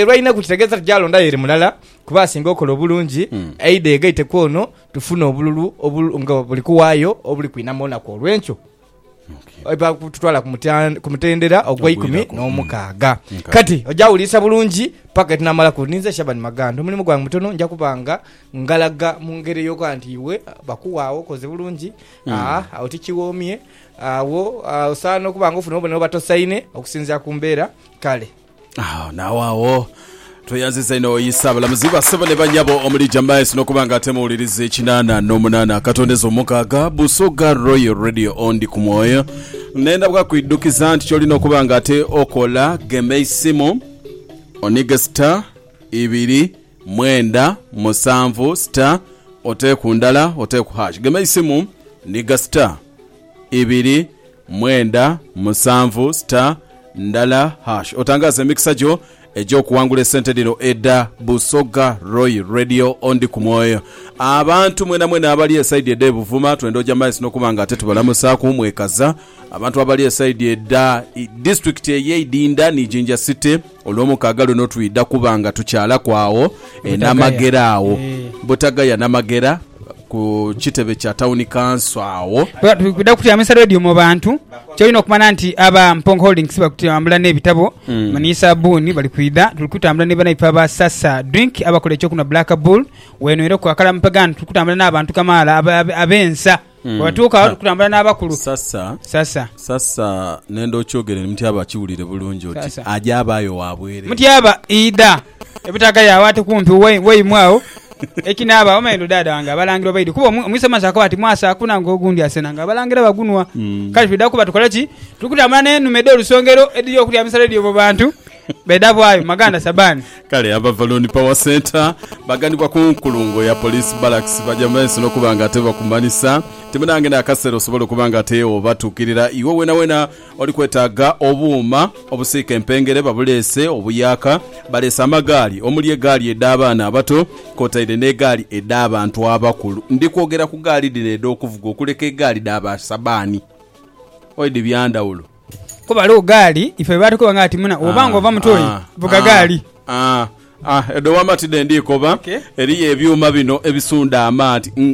Lwainaku kitegeeza ti gyalonda yere mulala kuba asinga okola obulungi, aidhe yegaite kwono tufune obululu nga buli kuwaayo obuli kwinama olunaku olwenkyo eba kututwala ku mutendera ogweikumi nomukaaga. Kati oja wuliisa bulungi paka etunamalaku. Ninze Shaban Maganda, omulimu gwange mutono nja kuba nga ngalaga mungeri eyokuba nti iwe bakuwaawo okoze bulungi agho tikiwoomye agho osaana okuba nga ofuna obubonero obubatosaine okusinziira kumbeera kale. Awo naawe agho. Tweyanziza inho oyisa abalamuzi ba sebo ne banyabo omuli Jamais nokuba nga ate muwuliriza ekinana nomunana akatondeza omukaaga Busoga Royal Radio ondi ku mwoyo nenda bwa kwidukiza nti kyolina okuba nga ate okola gema eisimu onige star ibiri mwenda musanvu star oteku ndala oteku hash gema eisimu niga star ibiri Mwenda, musanvu, star, ndala, hash otangaaze emikisa gyo egy'okuwangula esente dhino edha Busoga Royal Radio Ondi ku Mwoyo. Abantu mwenamwena abali esaidi edh'e Buvuma twenda oja maiso n'okuba nga ate tubalamusaaku mwekaza. Abantu abali esaidi edha disitulikiti ey'e Idinda ni Jinja City. Olwomukaaga luno twidha kuba nga tukyalaku agho e Namagera agho, Butagaya Namagera, ku kitebe kya Tawuni Kanso agho. Twidha kutyamisa leediyo mu bantu. Kyolina okumanya nti aba Mpongo Holdings bali kutambula n'ebitabo ni saabbuuni. Bali kwidha, tuli kutambula ni banaife aba Sasa Drink abakola ekyokunhwa Black Bull. Wenhwereku akalamu pegani. Tuli kutambula n'abantu kamaala ab'ensa. Mm. Bwebatuuka agho kutambula n'abakulu. Sasa, Sasa. sasa nenda okyogere ni Mutyaba akiwulire bulungi oti Sasa. aja abaayo wa bwerere. Mutyaba idha ebutaga yawe ate kumpi we- weimwe agho ekinaaba omanye ndo daada wange abalangira obaidhi kuba omu- omwise amaso akoba ati mwasa akuna nga ogundi asena nga abalangira bagunwa Mm. kale twidha kuba tukola ki tuli kutambula n'enume edh'olusongero edhiri okutyamisa leediyo mu bantu Beda bwayo maganda sabani. Kale Abavaloni Power Centre baganibwa ku nkulungo ya Police Barracks baja mu maiso n'okuba nga ate bakumanhisa nti munange n'akaseera osobola okuba nga ate obatuukirira iwe weenaweena oli kwetaaga obuuma obusiika empengere babuleese, obuyaaka, baleese amagaali omuli egaali edh'abaana abato kwotaire n'egaali edh'abantu abakulu. Ndi kwogera ku gaali dhino edh'okuvuga okuleka egaali dha ba sabani. Oidhi bya ndhawulo. Kuba ghaligho gaali ife bye baatukoba nga ati muna bw'oba ng'ova mu toyi, vuga gaali. Edho wama ti dhe ndi koba. Eriyo ebyuma bino ebisunda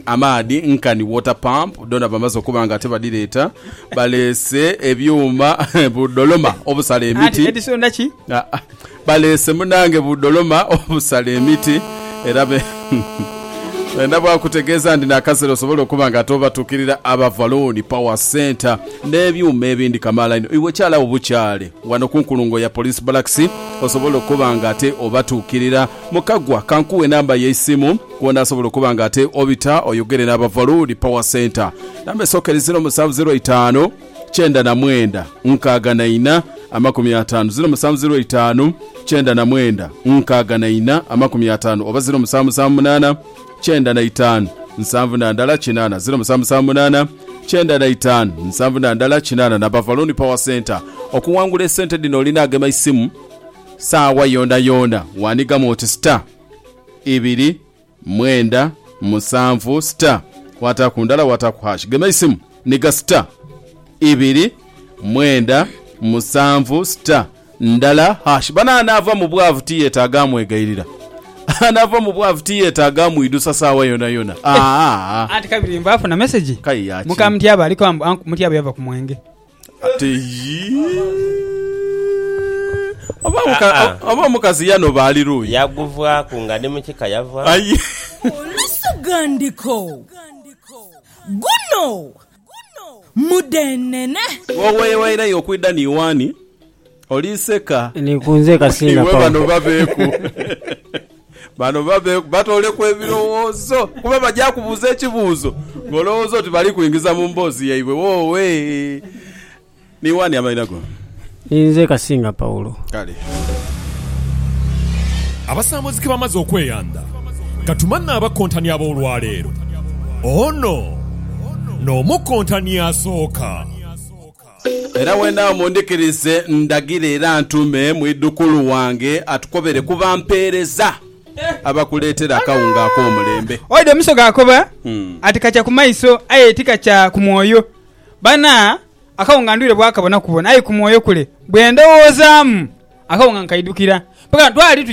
amaadhi nkani water pump, dhona bamaze okuba nga ate badhireeta. Baleese ebyuma bu doloma obusala emiti. Edhisunda ki? Baleese munange budholoma obusala emiti era benda bwakutegeeza ndina akaseera osobole okuba nga ate obatukirira Abavaloni Power Centre nebyuuma ebindi kamaala inho iwe kyaala wo bukyaale wano kunkulungo ya Police Barracks osobole okuba nga ate obatukirira. Mukagwa kankuwe enamba yeisimu kwonasobola okuba nga ate obita oyogere n'Abavaloni Power Centre. Namba esooka eri ziro musanvu ziro itaanu. kyenda na mwenda nkaaga na ina amakumi ataanu ziro musanvu ziro itaanu kyenda na mwenda nkaaga na ina amakumi ataanu oba ziro musanvu musanvu munaana kyenda na itaanu nsanvu na ndala kinaana ziro musanvu musanvu munaana kyenda na itaanu nsanvu na ndala kinaana na Bavaloni Power Centre. Okuwangula esente dhino olina agema isimu saawa yoona yoona. Waanigamu oti star ibiri. Mwenda, musanvu, star, kwataku ndala wataku hash. Gema eisimu ni ga star, ibiri, mwenda, musanvu, star, ndala, hash. Bano anaava mu bwavu tiyetaaga amwegairira. Anaava mu bwavu tiyetaaga amwidusa saawa yonayona. Aa! Anti kabiri mbu afuna message Kaye ya ki? muka Mutyaba aliko mbu anku Mutyaba yava ku mwenge. Ate yii. Oba omukazi yanoba ali luuyi. Yaguvaaku nga ni mu kika yavaaku. Aye. Olusoghandiko, Guno mudheenene. Wooweeyo airayo okwidha ni waani? Oli seka. Ni ku nze kasinga Iwe bano Paulo. baveeku. Bano baveeku. Batooleku ebirowoozo. Kuba baja kubuuza ekibuuzo ng'olowooza oti bali kuingiza mu mboozi yaibwe. Woowee. Ni wani amalira go? Ni nze kasinga Paulo. Kale. Abasambuzi ke bamaze okweyandha, ka tumanhe abakontani ab'olwaleero. Ono n'omukontani asooka. Era wendawo mundhikirize, ndagire era ntume mwidhukulu wange atukobere ku bampeereza abakuleetera akawunga ak'omulembe. Oidha omuso gaakoba ati kakya ku maiso aye ti kakya ku mwoyo. Bana, akawunga ndwire bwakabona kubona aye ku mwoyo kule. Bwe ndowoozaamu, akawunga nkaidhukira. Mpaka twali